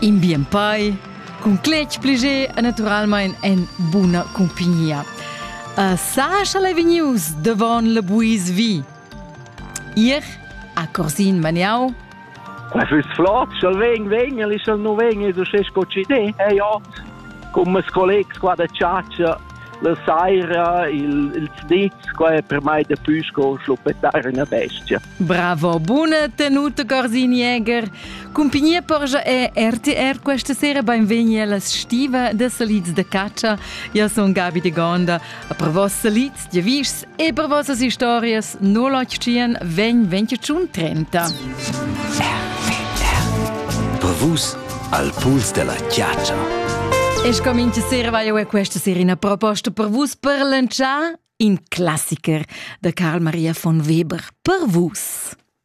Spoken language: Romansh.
In bien pai cun cletg pliger e naturalmein en buna cumpignia. A Sascha Levinius devon le buis vi. Ihr a Corsin Maniau. E füs flott, sch'el ven, ven, el ist no ven, du schest co ci ne. E ja, come collegs qua da Ciaccia, la saira, il, il snitz, qua è per mai de püsco schluppetare una bestia. Bravo, buna tenuta Gorsin-Jäger. Cumpignia porgia è RTR questa sera benvegni alla stiva de salids de caccia. Io sono Gabi de Gonda. Per vos salids, diavis e per vossas historias no l'occian ven 2030. Per vus al puls della caccia. E scomincio sera vaio è questa sera una proposta per vus per lanciare In classicher da Karl Maria von Weber per Vus.